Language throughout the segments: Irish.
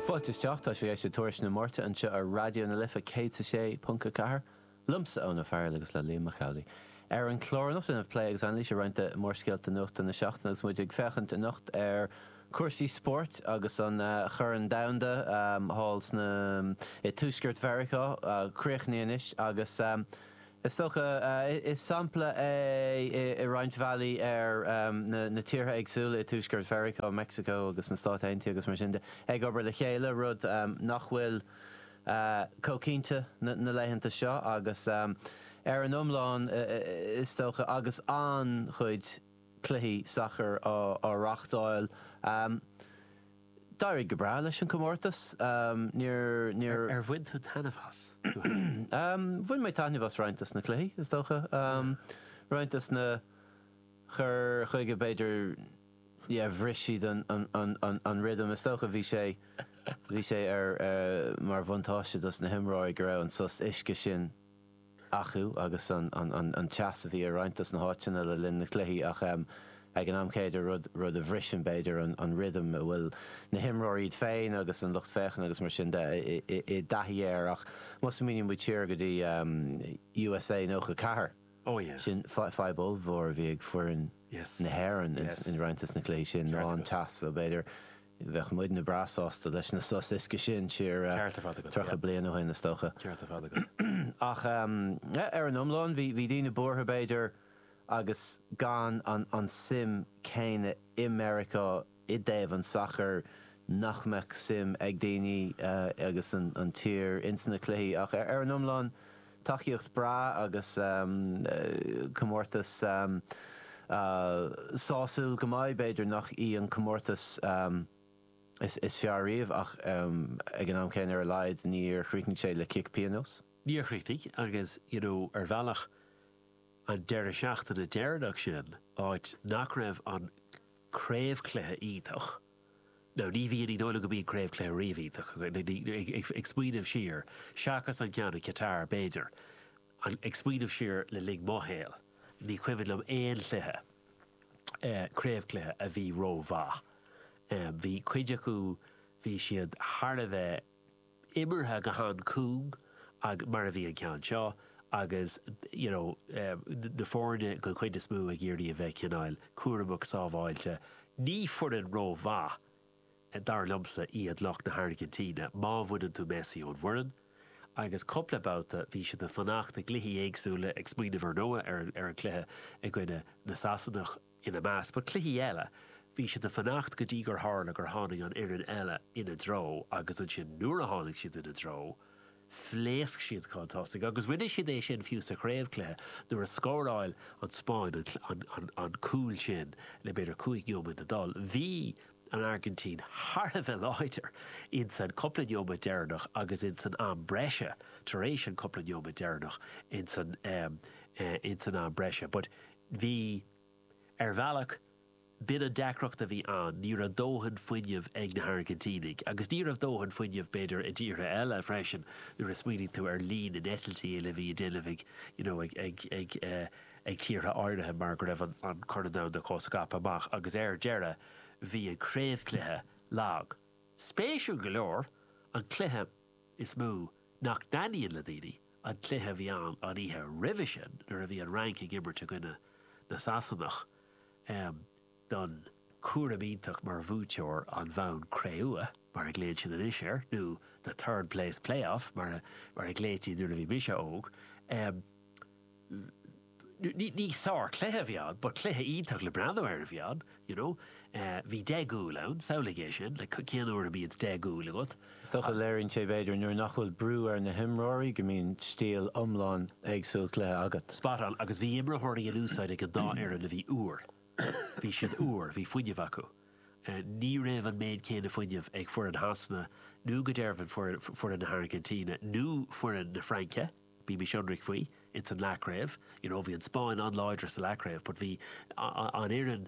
Fáilte isteach, tá sibh ag éisteacht le Tuairisc na Máirte anseo ar Raidió na Life 106.4, liomsa Eoin Ó Fearghail agus le Liam Mac Amhlaigh. Ar an chlár anocht, a,, plé agus anailís ar roinnt de mhórscéalta nuachta na seachtaine agus muid ag féachaint anocht ar chúrsaí spóirt agus an Corn Domhanda thall sna, i dTuaisceart Mheiriceá, críochnaithe anois agus. Is dócha, is sampla é i roinnt bhealaí ar na tíortha éagsúla i tuaisceart Mheiriceá, Meicsiceo agus na Stáit Aontaithe agus mar sin de, ag obair le chéile, rud nach bhfuil chomh cinnte na laethanta seo, agus ar an iomlán, is dócha, agus an-chuid cluichí sacair á reáchtáil. D'éirigh go breá leis an gcomórtas. Ar bhain tú taitneamh as tú féin? Bhain mé taitneamh as roinnt dos na cluichí, is dócha. Roinnt dos na cur chuige, b'fhéidir, yeah, bhris siad an rhythm. Is dócha bhí sé, bhí sé ar, mar bhuntáiste dos na himreoirí go raibh an sos uisce sin. acu agus an teas a bhí ar roinnt dos na háiteanna le linn na gcluichí ach ag an am céanna, rud a bhriseann, b'fhéidir, an rhythm a bhfuil na himreoirí, iad féin agus an lucht féachana agus mar sin de, i dtaithí air. Ach má smaoiníonn muid siar go dtí USA 94, sin fadhb ollmhór a bhí ag foireann na hÉireann in roinnt dos na cluichí sin ná an teas so b'fhéidir, Bheadh muidne breá sásta leis na sos uisce sin siar tríocha bliain ó shin, is dócha. Ach ar an iomlán, bhí daoine buartha, b'fhéidir, agus gan an tsuim chéanna i Meiriceá i dtaobh an tsacair, nach mbeadh suim ag daoine as an tír ins na cluichí. Ach ar an iomlán. Tacaíocht bhreá agus comórtas sásúil go maith. B'fhéidir nach í an comórtas is fearr riamh ach ag an am céanna ar a laghad níor chríochnaigh sé le cic pionóis. Níor chríochnaigh agus, you know, ar bhealach an deireadh seachtaine deireanach sin, áit nach raibh an craobhchluiche iontach, Nó ní bhíonn, ní dóigh liom go mbíonn craobhchluiche riamh, ag smaoineamh siar, seachas an ceann i Qatar, b'fhéidir, ag smaoineamh siar le linn mo shaoil, ní cuimhin liom aon chluiche, craobhchluiche, a bhí rómhaith. Bhí cuid acu, bhí siad thar a bheith. imeartha go han-cúng mar a bhí an ceann seo agus you know na foirne den chuid is mó ag iarraidh a bheith cineál cúramach sábháilte. Ní foireann rómhaith dar liomsa iad lucht na hAirgintíne má bhaineann tú Messi ón bhfoireann agus cúpla babhta bhí siad ag fanacht i gcluichí éagsúla, ag smaoineamh ar ndóigh ar an cluiche i gcoinne na Sasanach. ina measc. But cluichí eile. Bhí siad a fanacht go dtí gur tharla gur tháinig an fhoireann eile ina dtreo agus ansin nuair a tháinig siad ina dtreo, phléasc siad chun tosaigh agus rinne siad é sin fiú sa chraobhchluiche nuair a scóráil an Spáinn an cúl sin le b'fhéidir cúig neomat a dhul. Bhí an Airgintín thar a bheith láidir insan cúpla neomat deireanach agus insan am breise tar éis an cúpla neomat deireanach insan am breise but, Bhí, ar bhealach. B'in an deacracht a bhí ann, ní raibh dóthain fuinnimh ag na hAirgintínigh. Agus ní raibh dóthain fuinnimh, b'fhéidir, i dtíortha eile freisin, nuair a smaoiníonn tú ar líon na n-eitiltí uile a bhí a déanamh ag, you know, ag, ag, ag, ag tíortha áirithe mar go raibh an Corn Domhanda chomh scaipthe amach. Agus ar deireadh, bhí an craobhchluiche lag. Spéisiúil go leor, an cluiche. is mó nach dtaitníonn le daoine an cluiche a bhí ann an oíche roimhe sin nuair a bhí an Fhrainc ag imirt i gcoinne na Sasanach don chúram iontach mar bhuaiteoir an bhonn cré-umha, mar a ghlaonn siad anois air, nó the third place play-off mar a ghlaoití nuair a bhí mise óg. Ní sárchluiche a bhí ann, but cluiche iontach le breathnú air a bhí ann, you know. Bhí deich gcúl ann, samhlaigh é sin, like cén uair a mbíonn deich gcúl agat? Is dócha, léiríonn sé b'fhéidir nuair nach bhfuil brú ar na himreoirí, go mbíonn stíl iomlán éagsúil cluiche agat. Spot on, agus bhí imreoirí in úsáid ag an dá fhoireann a bhí úr, bhí siad úr, bhí fuinneamh acu. Ní raibh an méid céanna fuinnimh ag foireann Shasana nó go deimhin foireann na hAirgintíne nó foireann na Fraince. Bímís ionraic faoi, ins an leathchraobh, you know, bhí an Spáinn an-láidir sa leathchraobh but bhí an fhoireann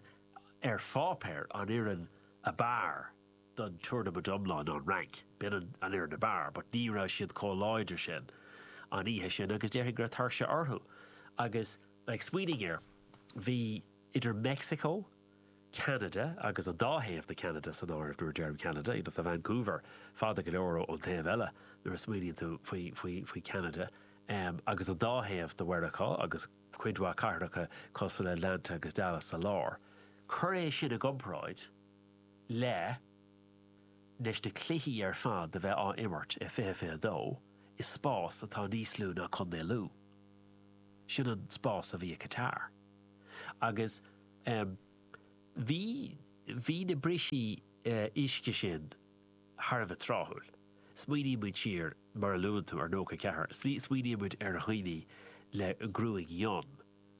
ar pháipéar, an fhoireann a b'fhearr don tournament iomlán ná an Fhrainc. B'in an fhoireann a b'fhearr but ní raibh siad chomh láidir sin an oíche sin agus déarfainn go raibh tuirse orthu agus, like, smaoinigh air, bhí. idir Meicsiceo, Ceanada agus an dá thaobh de Cheanada san áireamh nuair a deirim Ceanada, you know, tá Vancouver fada go leor ón taobh eile nuair a smaoiníonn tú faoi Cheanada, agus an dá thaobh de Mheiriceá agus cuid mhaith cathracha cosúil le Atlanta agus Dallas sa lár. Cuir é sin i gcomparáid le leis na cluichí ar fad a bheith á n-imirt i 2022 i spás atá níos lú ná Contae Lú. Sin an spás a bhí i Qatar. agus bhí bhí na bristí uisce sin thar a bheith tráthúil. Smaoiníonn muid siar, mar a luann tú, ar nócha ceathair, smaoiníonn muid ar dhaoine le gruaig fhionn,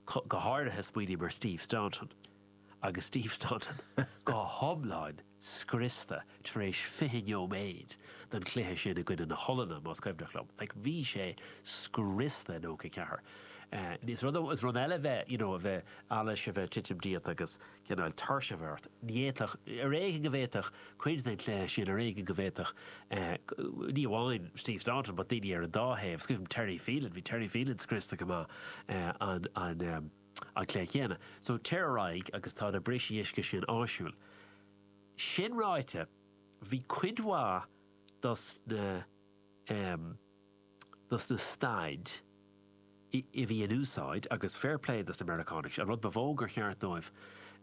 go háirithe smaoiním ar Steve Staunton, agus Steve Staunton go hiomlán scriosta. tar éis fiche neoméid den chluiche sin i gcoinne na hOllainne, más cuimhneach liom, like bhí sé scriosta i nócha ceathair. Is rud eile a bheith you know a bheith allas, a bheith titim díot agus cineál tuirse a bheith ort. Ní fhéadfadh, ar éigean go bhféadfadh cuid den chluiche sin, ar éigean go bhféadfadh ní amháin Steve Staunton but daoine ar an dá thaobh, 's cuimhnim Terry Phelan, bhí Terry Phelan scriosta go maith an an an cluiche chéanna. So tar ar aghaidh agus tá na brisí uisce sin áisiúil. Sin ráite, bhí cuid mhaith dos na em, dos na staid i, a bhí in úsáid, agus fair play dos na Meiriceánaigh, is an rud ba mhó gur cheart dóibh,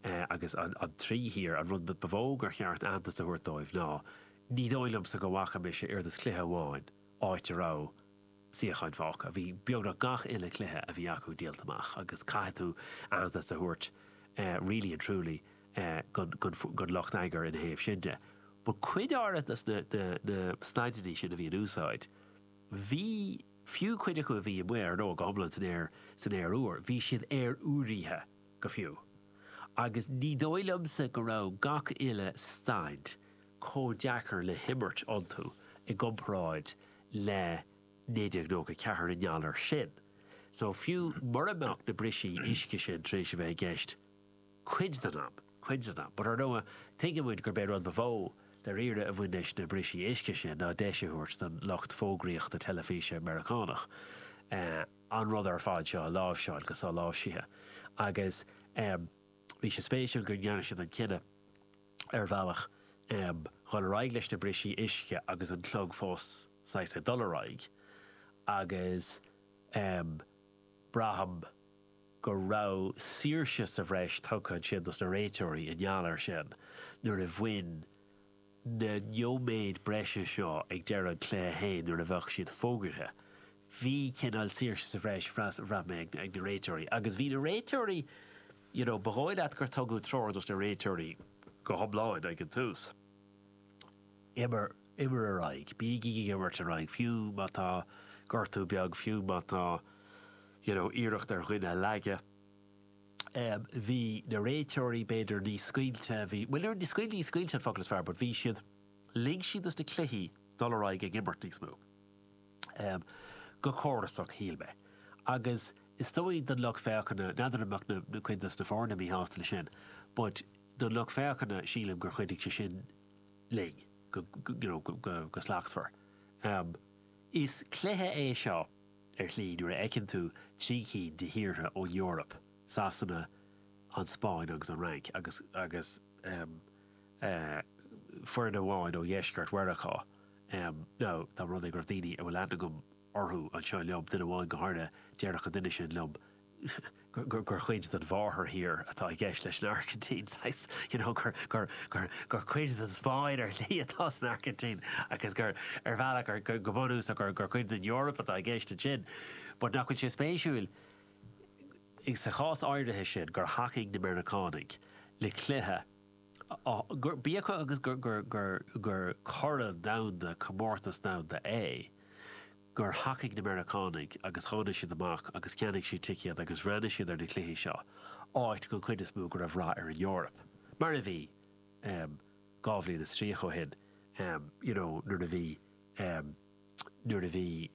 eh, agus an, an trí thír, an rud ba mhó gur cheart aitheantas a thabhairt dóibh ná, ní dóigh liomsa go bhfaca mise ar aon dos cluiche amháin áit a raibh, suíocháin fágtha. Bhí beagnach gach uile chluiche a bhí acu díolta amach agus caithfidh tú aitheantas a thabhairt really and truly don lucht eagair ina thaobh sin de. But cuid áirithe de na staideanna sin a bhí in úsáid, bhí, fiú cuid acu a bhí amuigh ar ndóigh go hiomlán san aer, san aer úr, bhí siad aer-úraithe go fiú. Agus ní dóigh liomsa go raibh gach uile staid, chomh deacair le himirt iontu i gcomparáid le 1994 i ngeall air sin. So, fiú mura mbeadh na brisí uisce sin tar éis a bheith i gceist cuid den am, cuid den am, but ar ndóigh, tuigeann muid gurb é rud ba mhó, dairíre, a bhain leis na brisí uisce sin ná deis a thabhairt don lucht fógraíochta teilifíse Meiriceánach an rud ar fad seo a láimhseáil go soláimhsithe agus bhí sé spéisiúil go ndearna siad an cinneadh ar bhealach, dhul ar aghaidh leis na brisí uisce agus an clog fós saghas ag dul ar aghaidh, agus braithim go raibh saoirse sa bhreis tugtha ansin dos na réiteoirí i ngeall air sin ó thaobh na neoiméid breise seo ag deireadh an chluiche féin nuair a bheadh siad fógartha bhí cineál saoirse sa bhreis, bhraith mé, ag na réiteoirí. Agus bhí na réiteoirí, you know, ba dhóigh leat gur tugadh treoir dos na réiteoirí go hiomlán ag an tús, imir, imir ar aghaidh, bígí ag imirt ar aghaidh, fiú má tá gortú beag, fiú má tá, you know, iarracht ar dhuine a leagadh. Em, bhí na réiteoirí b'fhéidir níos scaoilte, bhí, bhuel, níor, scaoil, ní scaoilte an focal is fearr, but bhí siad, lig siad dos na cluichí dul ar aghaidh ag imirt níos mó. go córasach, shíl mé, agus is dóigh don lucht féachana, n'fheadar an mbeadh cuid dos na foirne míshásta leis sin, but don lucht féachana, sílim gur chuidigh sé sin linn, go, you know, go slachtmhar. Is cluiche é seo, ar shlí, nuair a fheiceann tú trí cinn de thíortha ón Eoraip, Sasana, an Spáinn agus an Fhrainc, agus, agus, foireann amháin ó dheisceart Mheiriceá, agus dá mba rud é go raibh daoine a bhfuil aithne agam orthu anseo liom, duine amháin go háirithe, déarfadh an duine sin liom gur cuid den mháthairthír atá i gceist leis an Airgintín, saghas, you know, gur cuid den Spáinn ar shlí atá san Airgintín agus gur, ar bhealach, go bunúsach gur cuid den Eoraip atá i gceist ansin. But nach bhfuil sé spéisiúil, sa chás áirithe sin, gur thacaigh na Meiriceánaigh le cluiche, Bíodh is gur corn domhanda, comórtas domhanda, é, gur thacaigh na Meiriceánaigh agus tháinig siad amach agus cheannaigh siad ticéid agus bhreathnaigh siad ar na cluichí seo, áit, den chuid is mó, go raibh rath ar an Eoraip, mar a bhí, dhá bhliain is tríocha ó shin, you know, nuair a bhí. nuair a bhí,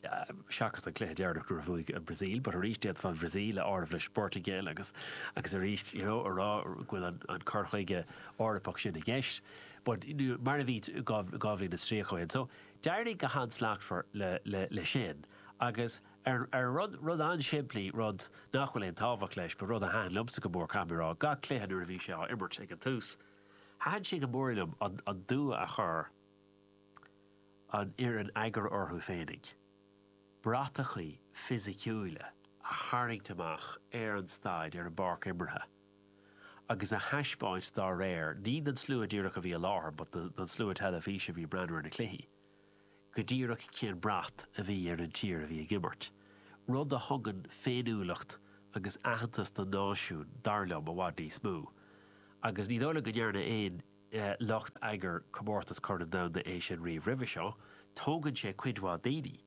seachas an cluiche deireanach nuair a bhuaigh an Bhrasaíl, but arís d'fhéadfá an Bhrasaíl a áireamh leis an bPortaingéil agus, agus arís, you know, a rá go bhfuil an, an cur chuige Eorpach sin i gceist, but mar a bhí dhá, dhá bhliain is tríocha ó shin. So d'éirigh go han-slachtmhar le, le, le sin agus ar, ar an rud, rud an-simplí, rud nach bhfuil aon tábhacht leis but rud a thaitin liomsa go mór, caithfidh mé a rá, gach cluiche nuair a bhí sé á imirt ag an tús, thaitin sé go mór liom an, an dua a chur. an fhoireann eagair orthu féinig, bratachaí fisiciúila a tharraingt amach ar an staid, ar an bpáirc imeartha, agus a thaispeáint dá réir, ní don slua díreach a bhí i láthair but don slua teilifíse a bhí ag breathnú ar na cluichí, go díreach cén brat a bhí ar an tír a bhí ag imirt. Rud a thugann féiniúlacht agus aitheantas don náisiún, dar liom, i bhfad níos mó. Agus ní dóigh liom go ndearnadh aon. lucht eagair Comórtas Corn Domhanda é sin riamh roimhe seo, tógann sé cuid mhaith daoine,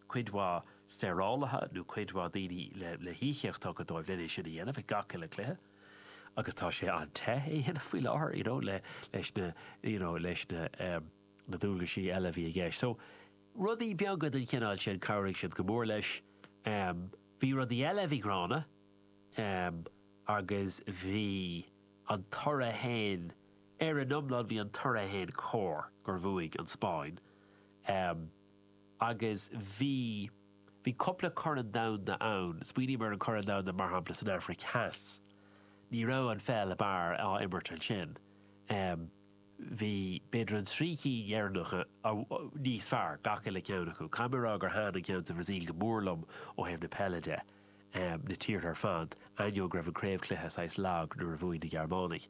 cuid mhaith saorálaithe nó cuid mhaith daoine le híocaíocht tugtha dóibh le é sin a dhéanamh ag gach uile cluiche agus tá sé an-te é a dhéanamh faoi láthair you know leis na you know leis na dualgaisí eile a bhí i gceist. So rudaí beaga den chineál sin chabhraigh siad go mór leis. Bhí rudaí eile a bhí gránna agus bhí. An toradh féin, ar an iomlán, bhí an toradh féin cóir, gur bhuaigh an Spáinn, agus bhí, bhí cupla corn domhanda ann, smaoiním ar an corn domhanda, mar shampla, san Aifric Theas, ní raibh an pheil ab fhearr á imirt ansin, bhí, b'fhéidir, an trí cinn dheireanacha níos fearr, gach uile cheann acu. Caithfidh mé a rá gur thaitin an ceann sa Bhrasaíl go mór liom ó thaobh na peile de. na tíortha ar fad, ainneoin go raibh an craobhchluiche saghas lag nuair a bhuaigh na Gearmánaigh.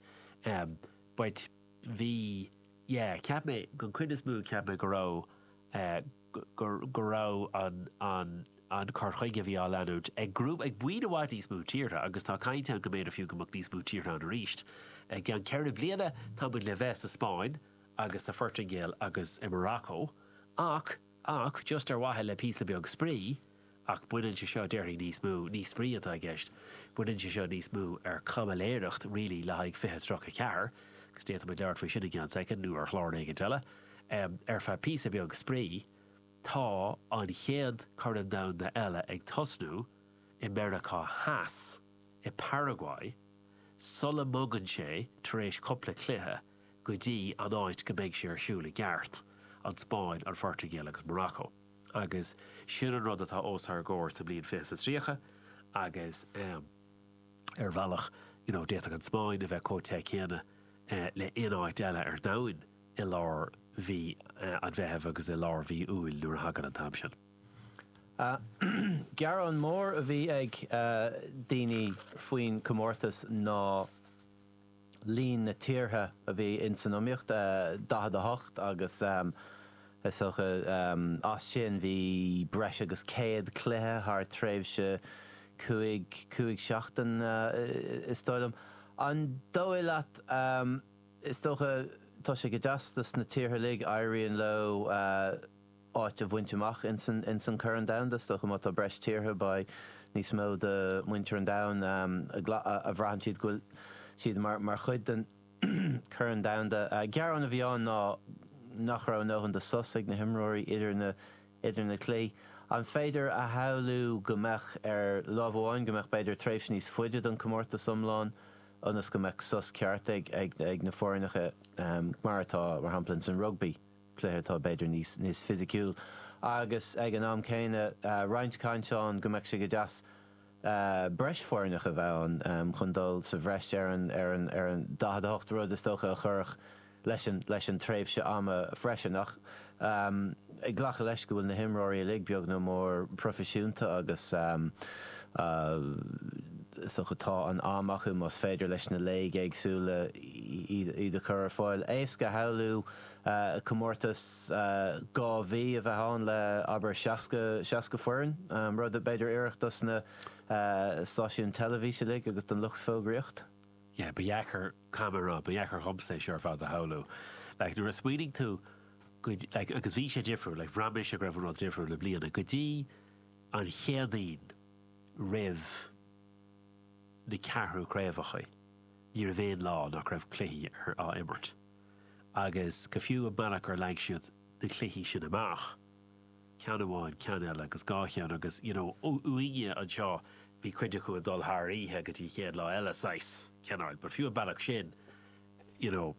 B'ait. Bhí. Yeah, cheap mé, an chuid is mó, cheap mé go raibh, go raibh an, an, an cur chuige a bhí á leanúint ag grúpa, ag buíon i bhfad níos mó tíortha agus tá caint ann go mb'fhéidir fiú go mbeadh níos mó tíortha ann arís i gceann ceithre bliana, tá muid le bheith sa Spáinn agus sa Phortaingéil agus i Morocco ach. Ach just ar mhaithe le píosa beag spraoi, ach baineann sé seo, déarfainn, níos mó, ní spraoi atá i gceist, baineann sé seo níos mó ar caimiléireacht really le haghaidh fiche tríocha ceathair, agus d'fhéadfaimid labhairt faoi sin i gceann soicind nó ar chlár éigint eile, ar feadh píosa beag spraoi, tá an chéad Chorn Domhanda eile ag tosnú i Meiriceá Theas, i Paraguay, sula mbogann sé tar éis cupla cluiche, go dtí an áit go mbeidh sé ar siúl i gceart, an Spáinn, an Phortaingéil agus Morocco. Agus sin an rud atá os ár gcomhair sa mbliain fiche is a tríocha agus ar bhealach you know d'fhéadfadh an Spáinn a bheith comh te céanna le aon áit eile ar domhain i lár mhí an Mheithimh agus i lár mhí Iúil nuair a thagann an t-am sin. Gearán mór a bhí ag daoine faoin chomórtas ná líon na tíortha a bhí in san iomaíocht, 48, agus is dócha as sin bhí breis agus 100 cluiche thar tréimhse cúig, cúig seachtain is dóigh liom. An dóigh leat, is dócha, tá sé go deas dos na tíortha uilig, éiríonn leo, áit a bhaint amach ins an Corn Domhanda. Is dócha má tá breis tíortha, beidh níos mó de mhuintir an domhain a bhraitheann siad go bhfuil siad mar chuid den Chorn Domhanda. Gearán a bhí ann ná nach raibh a ndóthain de sos ag na himreoirí idir na cluichí. An féidir a shamhlú go mbeadh, ar láimh amháin, go mbeadh b'fhéidir tréimhse níos faide don comórtas iomlán ionas go mbeadh sos ceart ag na foirneacha, mar atá, mar shampla, ins an rugbaí? cluiche atá b'fhéidir níos fisiciúil agus ag an am céanna roinnt caint ann go mbeadh sé go deas breis foirneach a bheith ann chun dul sa bhreis ar an 48 rud is dócha a chuirfeadh leis an tréimhse ama freisin ach ag glacadh leis go bhfuil na himreoirí uilig beag nó mór proifisiúnta agus is dócha tá an am acu más féidir leis na léig éagsúla iad a chur ar fáil. Éasca a shamhlú. comórtas dhá mhí a bheith ann le, abair, 60, seasca foireann, rud ab fhéidir oirfeadh dos na stáisiúin teilifís uilig agus don lucht fógraíocht. Yeah, ba dheacair, cé gur ba dheacair dhomsa é seo ar fad a shamhlú. Like, nuair a smaoinigh tú go, like, agus bhí sé difriúil, like, bhraith mise go raibh an rud difriúil i mbliana, go dtí an Chéadaoin roimh na ceathrú craobhacha, ní raibh aon lá nach raibh cluichí ar, á imirt. agus go fiú an bealach gur leag siad na cluichí sin amach, ceann amháin, ceann eile agus dhá cheann agus, you know, uainne anseo bhí cuid acu ag dul thar oíche go dtí an chéad lá eile saghas cineáil, but fiú an bealach sin, you know,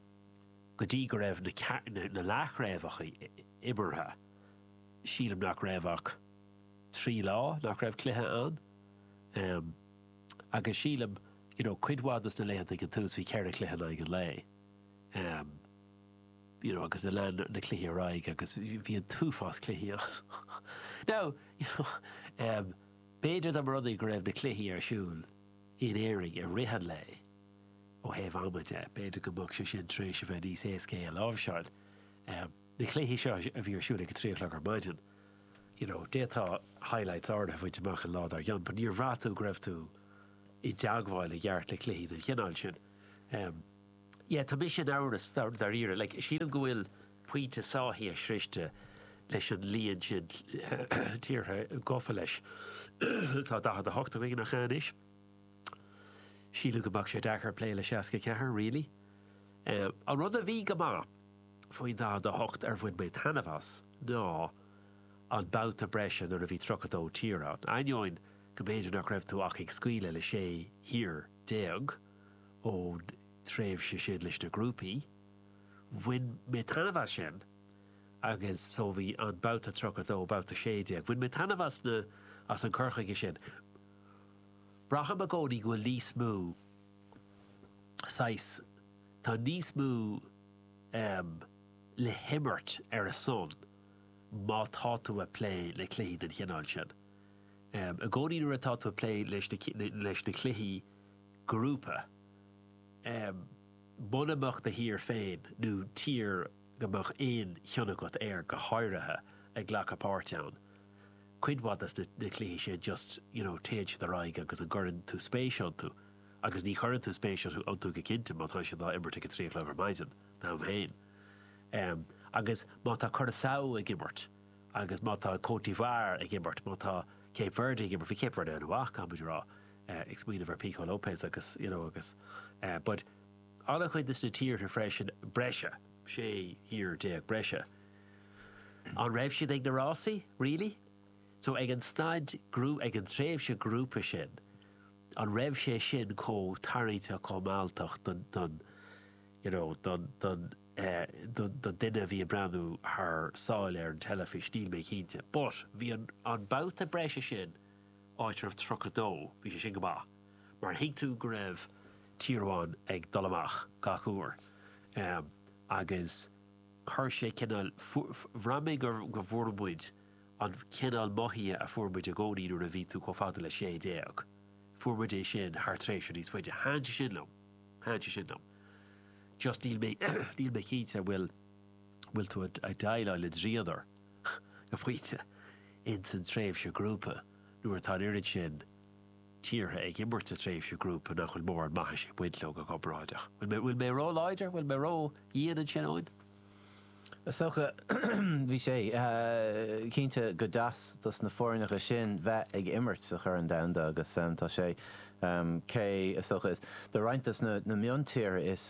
go dtí go raibh na, na leathchraobhacha imeartha, sílim nach raibh ach trí lá nach raibh cluiche ann, em, agus sílim, you know, cuid mhaith de sna laethanta ag an tús bhí ceithre chluiche in aghaidh an lae. you know, agus lean na cluichí ar aghaidh agus bhí an t-uafás cluichí ann. Now, you know, b'fhéidir dá mba rud é go raibh na cluichí ar siúl in Éirinn i rith an lae ó thaobh ama de, b'fhéidir go mbeadh sé sin tar éis a bheith níos éascaí a láimhseáil. Na cluichí seo a bhí ar siúl ag a trí a chlog ar maidin, you know, d'fhéadfá highlights áirithe a bhaint amach an lá dár gcionn, but níor bhraith tú go raibh tú i dteagmháil i gceart le cluichí den chineál sin. Em. Yeah, tá mise in amhras, dáiríre. Like, sílim go bhfuil pointe sáithithe sroichte leis an líon sin tíortha gofa leis. tá 48 againn nach ea anois. Sílim go mbeadh sé deacair plé le 64, really. Em. An rud a bhí go maith faoin 48 ar bhain mé taitneamh as ná an babhta breise nuair a bhí 32 tír ann, ainneoin go mb'fhéidir nach raibh tú ach ag scaoileadh le sé thír. déag, ón tréimhse sin leis na grúpaí. Bhain mé taitneamh as sin agus so bhí an babhta tríocha a dó, babhta sé déag, bhain mé taitneamh as na, as an cur chuige sin. Braithim i gcónaí go bhfuil níos mó saghas, tá níos mó em le himirt ar a son má tá tú a' plé le cluichí den chineál sin. I gcónaí nuair atá tú ag plé leis na cluichí grúpa, muna mbeadh do thír féin nó tír go mbeadh aon chion agat air go háirithe ag glacadh páirt ann, cuid mhaith de na cluichí sin just, you know, téann siad ar aghaidh agus an gcuireann tú spéis iontu? Agus ní chuireann tú spéis iontu go cinnte má tá siad á imirt ag a trí a chlog ar maidin, dom féin. Agus má tá Curaçao ag imirt. agus má tá Côte d'Ivoire ag imirt, má tá Cape Verde ag imirt, bhí Cape Verde an-mhaith, caithfidh muid a rá, ag smaoineamh ar Pico Lopes agus, you know, agus eh, but an-chuid de sna tíortha freisin breise, sé thír déag breise, an raibh siad ag na rásaí, really? So ag an staid grú, ag an tréimhse grúpa sin, an raibh sé sin chomh tarraingteach, chomh mealltach don, don, you know, don, don, don duine a bhí ag breathnú thar sáile ar an teilifís, níl mé cinnte. But, bhí an babhta breise sin, áit a raibh 32, bhí sé sin go maith, mar thuig tú go raibh tír amháin ag dul amach gach uair. Agus chuir sé cineál, bhraith mé go bhfuair muid an cineál mothaithe a fuair muid i gcónaí nuair a bhí tú chomh fada le sé déag, fuair muid é sin thar tréimhse níos faide. Thaithin sé sin liom. Thaithin sé sin liom. Just níl mé, níl mé cinnte an bhfuil, an bhfuil tú ag déileáil le dríodar go pointe ins an tréimhse ghrúpa nuair atá an oiread sin tíortha ag imirt sa tréimhse ghrúpa nach bhfuil mórán maitheasa ag baint leo go comparáideach. An bhfuil mé ró-láidir? An bhfuil mé ró-dhian ansin, Eoin? Is dócha, bhí sé, cinnte go deas dos na foirneacha sin bheith ag imirt sa Chorn Domhanda agus tá sé, cé, is dócha, is do roinnt dos na miontíortha is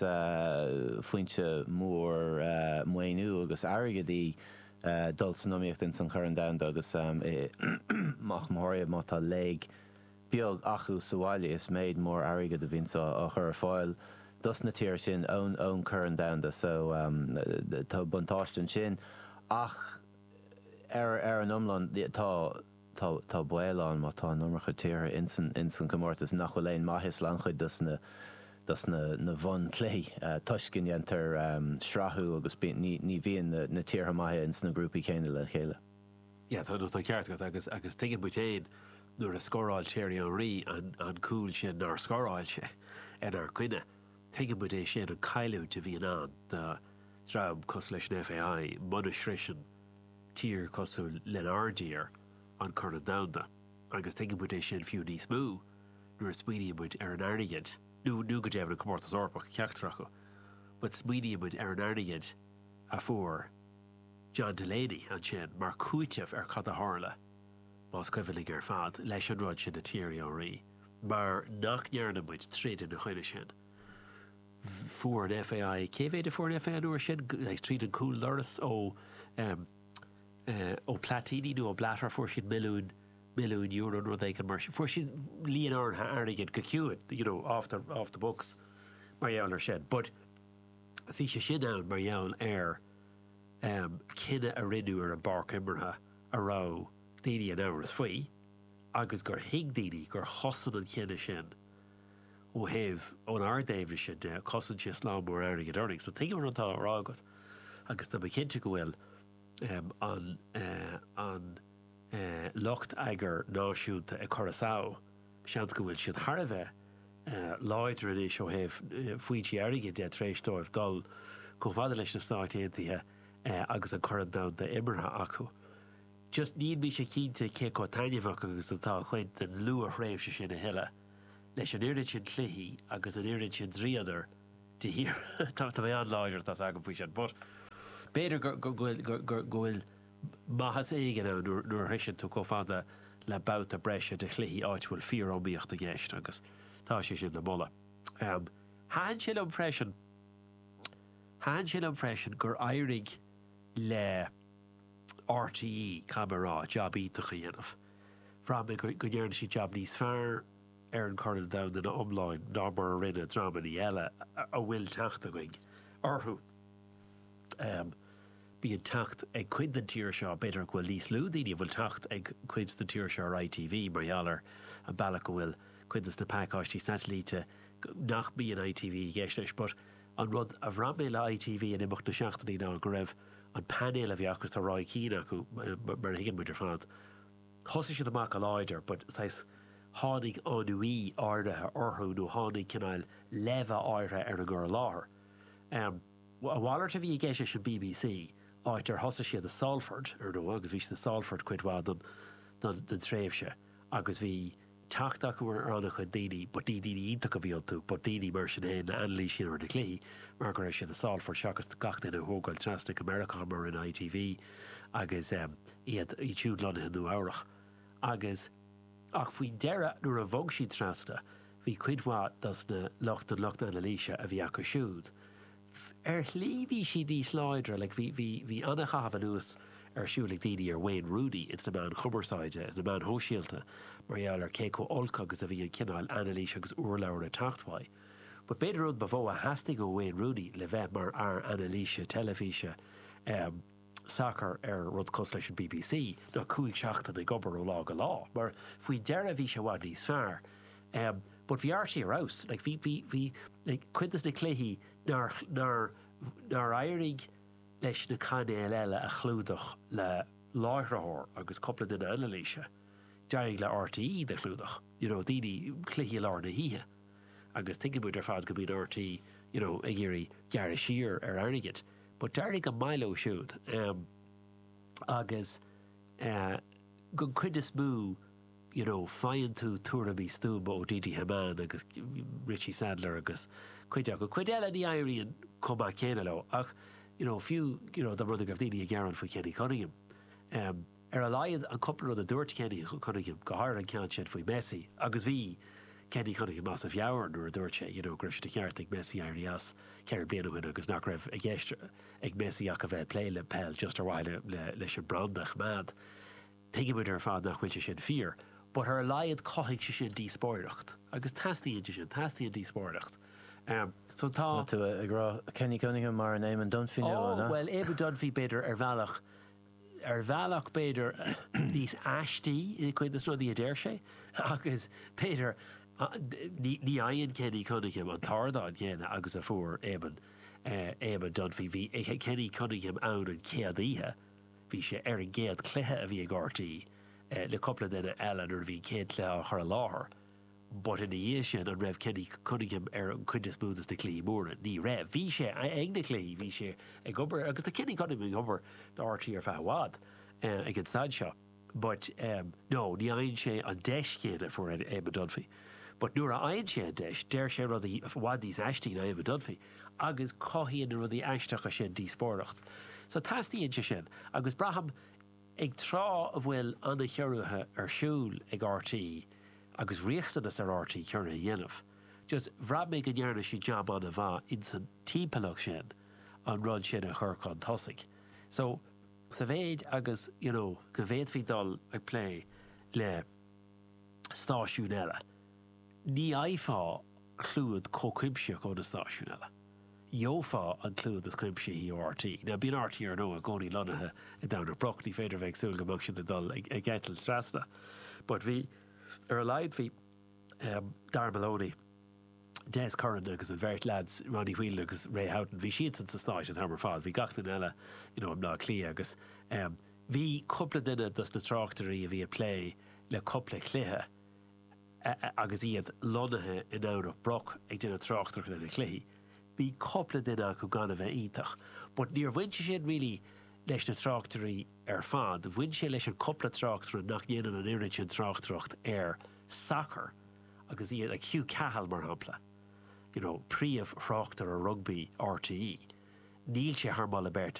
foinse mhór maoiniú agus airgid í dul san iomaíocht ins an Chorn Domhanda agus i, mórmhór iad má tá léig, beag acu sa bhaile is méid mór airgid a bhíonns á chur ar fáil dos na tíortha sin ón Chorn Domhanda so tá buntáiste ansin ach ar an iomlán tá baol ann má tá an iomarca tíortha ins an gcomórtas nach bhfuil aon maitheas le an-chuid dos na bunchluichí toisc go ndéantar srathú agus ní bhíonn na tíortha maithe ins na grúpaí céanna le chéile. Sea, tá an ceart agat, agus tuigeann muid féin nuair a scóráil Thierry Henry an cúl sin nár scóráil sé inár gcoinne. Tuigeann muid é sin, an cailliúint a bhíonn ann do dhream cosúil leis an FAI muna shroiseann tír cosúil lenár dtír an Corn Domhanda. Agus tuigeann muid é sin fiú níos mó nuair a smaoiníonn muid ar an airgead, nó go deimhin an Comórtas Eorpach, ceachtar acu, but smaoiníonn muid ar an airgead a fuair John Delaney ansin mar chúiteamh ar cad a tharla, más cuimhin linn ar fad, leis an rud sin le Thierry Henry, mar nach ndearna muid troid ina choinne sin. Fuair an FAI, cé mhéid a fuair an FAI an uair sin? Tríd an cúldoras ó ó Platini nó ó Blatter fuair siad milliún, milliún euro nó rud éigin mar sin. Fuair siad líon áirithe airgid go ciúin, you know, off the, off the books mar gheall ar sin. But bhí sé sin ann mar gheall ar, cinneadh a rinneadh ar an bpáirc imeartha a raibh daoine in amhras faoi agus gur thuig daoine gur chosain an cinneadh sin ó thaobh, ón ardaidhm sin de, chosain sé slám mór airgid orainn. So tuigim rud atá á rá agat agus tá mé cinnte go bhfuil an lucht rugbaí náisiúnta ag cur as adh, Seans go bhfuil siad thar a bheith láidir anois ó thaobh foinsí airgid de tar éis dóibh dul chomh fada leis na Stáit Aontaithe agus an Corn Domhanda imeartha acu. Just níl mise cinnte cé chomh taitneamhach agus atá cuid den luath-thréimhse sin a thuilleadh, leis an oiread sin cluichí agus an oiread sin dríodar de shíor. Tá mé an-láidir atá 's agam faoi sin, but b'fhéidir go bhfuil. maitheas éigin ann nuair a shroicheann tú chomh fada le babhta breise de chluichí áit a bhfuil fíoriomaíocht i gceist agus tá sé sin le moladh. Thaitin sé liom freisin, thaitin sé liom freisin gur éirigh le RTÉ, caithfidh mé a rá, jab iontach a dhéanamh. Bhraith mé go ndearna siad jab níos fearr ar an Chorn an Domhain ina iomláine ná mar a rinne dreamannaí eile a bhfuil teacht againn orthu. bíonn teacht ag cuid den tír seo, b'fhéidir go bhfuil níos lú daoine a bhfuil teacht ag cuid den tír seo ar ITV mar gheall ar an bealach go bhfuil cuid de na pacáistí satailíte nach mbíonn ITV i gceist leis but an rud a bhraith mé le ITV in imeacht na seachtainí ná go raibh an painéal a bhí acu, tá Roy Keane acu mar a thuigeann muid ar fad, thosaigh siad amach go láidir but saghas tháinig ennui áirithe orthu nó tháinig cineál leimhe áirithe ar an gcur i láthair. A mhalairt a bhí i gceist leis an BBC, áit ar thosaigh siad i Salford, ar ndóigh, agus bhí siad i Salford cuid mhaith den tréimhse agus bhí teacht acu ar an-chuid daoine, but ní daoine iontacha a bhí iontu, but daoine mar sin féin ann le hanailísiú ar na cluichí mar go raibh siad i Salford seachas gach éinne a thógáil trasna go Meiriceá mar a rinne ITV agus iad siúd lonnaithe i Nua-Eabhrach agus Ach faoi dheireadh, nuair a bhog siad trasna, bhí cuid mhaith dos na lucht, den lucht anailíse a bhí acu siúd, ar shlí bhí siad níos láidre, like bhí, bhí, bhí an-chaitheamh anuas ar siúl ag daoine ar Wayne Rooney ins na meáin chumarsáide, ins na meáin shóisialta, mar gheall ar cé chomh olc agus a bhí an cineál anailís agus urlabhra ag teacht uaidh. But b'fhéidir an rud ba mhó a theastaigh ó Wayne Rooney le bheith mar fhear anailíse teilifíse, eh, sacar ar rud cosúil leis an BBC, ná cúig seachtaine ag obair ó lá go lá, mar faoi dheireadh bhí sé i bhfad níos fearr. But bhí RTÉ ar fheabhas, like bhí, bhí, bhí like cuid de na cluichí nár, nár, nár éirigh leis na cainéil eile a chlúdach le láithritheoir agus cúpla duine anailíse, d'éirigh le RTÉ iad a chlúdach, you know, daoine, cluichí i lár na hoíche. Agus tuigeann muid ar fad go mbíonn RTÉ, you know, ag iarraidh gearradh siar ar airgead. But d'éirigh go maith leo siúd agus den chuid is mó you know faigheann tú tuairimí stuama ó Didi Hamann agus Richie Sadlier agus cuid acu. Cuid eile ní éiríonn chomh maith céanna leo ach you know fiú you know más rud é go raibh daoine ag gearán faoi Kenny Cunningham, Ar a laghad, an cúpla rud a dúirt Kenny Cunningham, go háirithe an ceann sin faoi Messi, agus bhí Kenny Cunningham as a mheabhair nuair a dúirt sé you know go raibh sé de cheart ag Messi éirí as ceithre bliana ó shin agus nach raibh i gceist ag Messi ach a bheith ag plé le peil just ar mhaithe leis an mbranda a choimeád, Tuigeann muid ar fad nach bhfuil sé sin fíor but ar a laghad chothaigh sé sin díospóireacht agus teastaíonn sé sin, teastaíonn díospóireacht. So tá. Luann tú Kenny Cunningham mar an Éamon Dunphy nua, an ea? Oh, bhuel, Éamon Dunphy, b'fhéidir, ar bhealach. ar bhealach b'fhéidir níos aistí i gcuid de na rudaí a deir sé agus b'fhéidir ní fhaigheann Kenny Cunningham an t-ardán céanna agus a fuair Éamonn, Éamonn Dunphy. Bhí Kenny Cunningham ann an chéad oíche, bhí sé ar an gcéad chluiche a bhí ag RTÉ le cúpla duine eile nuair a bhí an chéad chluiche á chur i láthair. But ina dhiaidh sin, an raibh Kenny Cunningham ar an chuid is mó de na cluichí móra? Ní raibh. Bhí sé ag na cluichí, bhí sé ag obair, agus tá Kenny Cunningham ag obair do RTÉ ar feadh i bhfad, ag an staid seo. But no, ní fhaigheann sé an deis chéanna a fuair Eamon Dunphy. But nuair a fhaigheann sé an deis, deir sé rudaí i bhfad níos aistí ná Eamon Dunphy agus cothaíonn na rudaí aisteacha sin díospóireacht. So teastaíonn sé sin agus braithim, Ag tráth a bhfuil an-chiorruithe ar siúl ag RTÉ agus riachtanas ar RTÉ ciorruithe a dhéanamh, just bhraith mé go ndearna siad jab an-mhaith insan timpeallacht sin an rud sin a chur chun tosaigh. So, sa mhéid agus, you know, go bhféadfaí dul ag plé le stáisiúin eile, ní fhaighfeá clúad chomh cuimsitheach ó na stáisiúin eile. gheofá an clúdach is cuimsithí ó RTÉ. Now bíonn RTÉ ar ndóigh i gcónaí lonnaithe i nDomhnach Broc, ní féidir a bheith ag súil go mbeadh siad ag dul ag eitilt trasna. But bhí, ar a laghad bhí ehm Darragh Maloney, Des Curran agus an bheirt leaids, Ronnie Whelan agus Ray Houghton, bhí siadsan sna Stáit an t-am ar fad, bhí gach duine eile you know i mBleá Cliath agus ehm bhí cúpla duine dos na tráchtairí a bhí ag plé le cúpla cluiche, agus iad lonnaithe i nDomhnach Broc ag déanamh tráchtaireachta ar na cluichí. Bhí cupla duine acu gan a bheith iontach, but níor bhain sé sin really leis na tráchtairí ar fad, bhain sé leis an cupla tráchtaire nach ndéanann an oiread sin tráchtaireacht ar shacar agus iad like Hugh Cahill mar shampla, you know, príomhthráchtaire rugbaí RTÉ, níl sé thar moladh beirte.